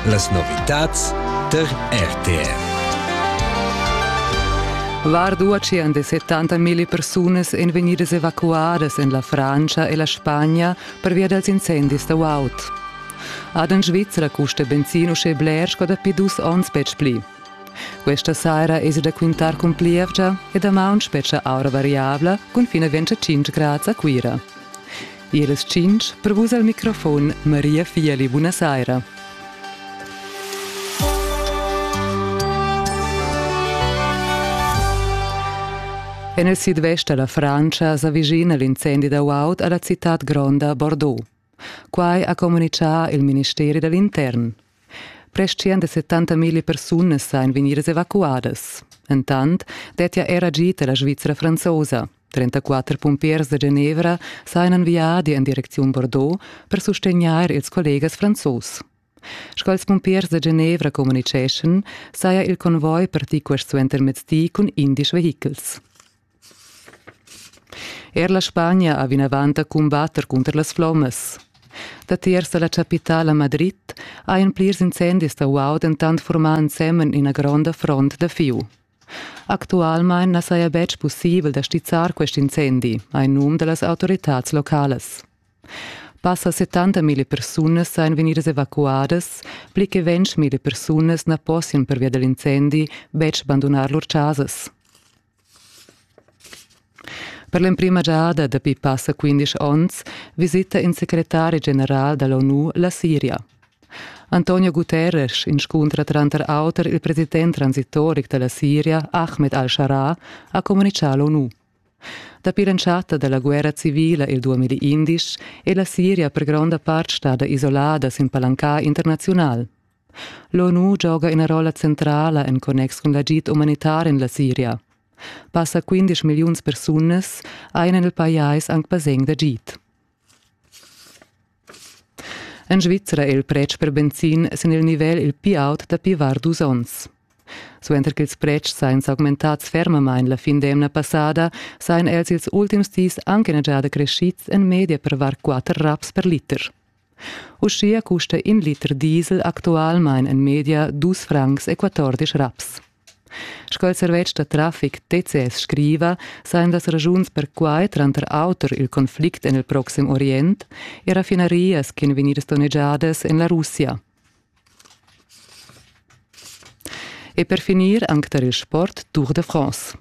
Las novitads tar RTR. Vard uaxian de 70.000 persunas en vegnidas evacuadas en la Francia e la Spagna pervia dals incendis da Waut. Ad en Svizzera custa benzin uschè bler sco dapi dus onns betg pli. Questa saira es da quintar cun plievgia e damaun spetga aura variabla cun fin a 25 grads a Cuira. Iras tschintg per vus al microfon Maria Fieli, buna saira. En il sidvest da la Francia s'avvicina l'incendi da guaud a la citad gronda Bordeaux. Quai ha communitgà il ministeri da l'intern. Prest 170 mila persunas san vegniras evacuadas. Entant dettia era gita la Svizra franzosa. 34 pumpiers da Genevra sajan viadi en direcziun Bordeaux per sustegnair ils collegas franzos. Sch'als pumpiers da Genevra communiceschan, saja il convoi partì quest suentermezdi cun indisch vehichels. Er la Spagna ha vinavant da cumbatter cunter las flommas. Datiers da la chapitala Madrid hajan plirs incendis da guaud dentant furmà ensemen ina gronda front da fieu. Actualmain na saja betg pussibel da stizzar quest incendi, ha in num da las autoritads localas. Passa 70.000 persunas sajan vegnidas evacuadas, pli che 20.000 persunas na possian pervia da l'incendi betg bandunar lur chasas. Per l'emprima giada dapi passa quindisch onns visita in secretari general dall'ONU la Siria. Antonio Guterres inscuntra tranter auter il president transitoric dalla Siria Ahmed al-Shara ha communicà l'ONU. Dapi l'entschatta dalla guerra civila il 2011 è la Siria per gronda part stada isolada sin palancar internaziunal. L'ONU gioga ina rolla centrala en connex cun l'agid umanitar en la Siria. Passa 15 milliuns persunas ein en il pajais anc basegn d'agid. En Svizra è il pretsch per benzin sin il nivel il pli aut dapi var dus onns. Suenter ch'ils pretschs sajan s'augmentads fermamain la fin d'emna passada, sajan els ils ultims dis anche già crescids en media per var 4 raps per liter. Uschia custa in liter diesel actualmain en media dus francs e quattordisch raps. Sco il servetsch da traffic TCS scriva, sajan las ragiuns per quai tranter auter il conflict en il proxim Orient e raffinarias ch'en vegnidas donnegiadas en la Russia. E per finir anche tar il sport Tour de France.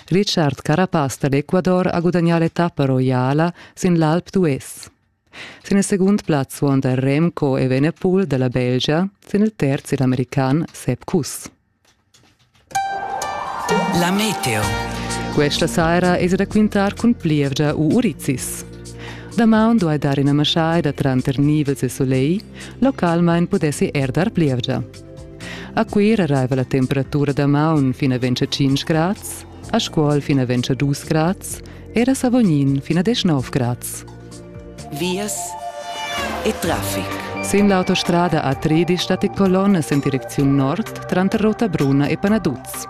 Richard Carapaz da l'Ecuador ha gudagnà l'etappa roiala sin l'Alp d'Huez. Sin il segund plaz suonda Remco Evenepoel dalla Belgia, sin il terz il american Sepp Kuss. La meteo. Questa saira es raquintar cun plievgia u urizis. Damaun duai dar ina maschaida tranter nivels e soleil, localmain pudessi er dar plievgia. A Cuira arriva la temperatura damaun fino a 25 grads, a Scuol fino a 22 grads e a Savognin fino a 19 grads. vias e traffic. Sin l'autostrada A13 stat il colonnas en direcziun nord tranter Rotabruna e Panaduz.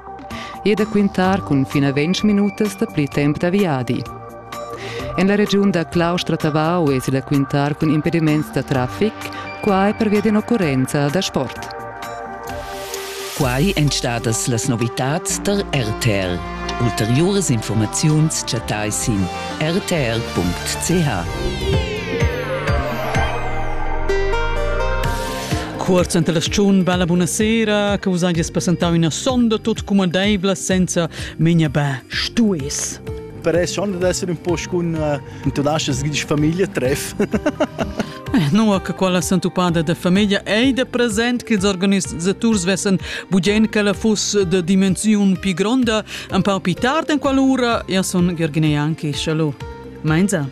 E da quintar cun fin a 20 minutas da pli temp da viadi. En la regiun da Claustra-Tavau èsi da quintar cun impediments da traffic, quai pervia d'un'occurrenza da sport. Quai èn stadas las novitads tar RTR. Ulteriuras informaziuns chattai sin rtr.ch. Cuorz enta la stagiun bella buonasera che vus hagies presentau ina sonda tut cumandeivla senza memia beh stues. Per sonda d'essere un po' con tu laschas gidar famiglia treff. Nua che quella sentupada da famiglia ei de present che ils organizators vessen bugen che la fuss de dimensiun più gronda, un po più tardi en quell'ora, ja son Gergine anche, shallo. Meinsa?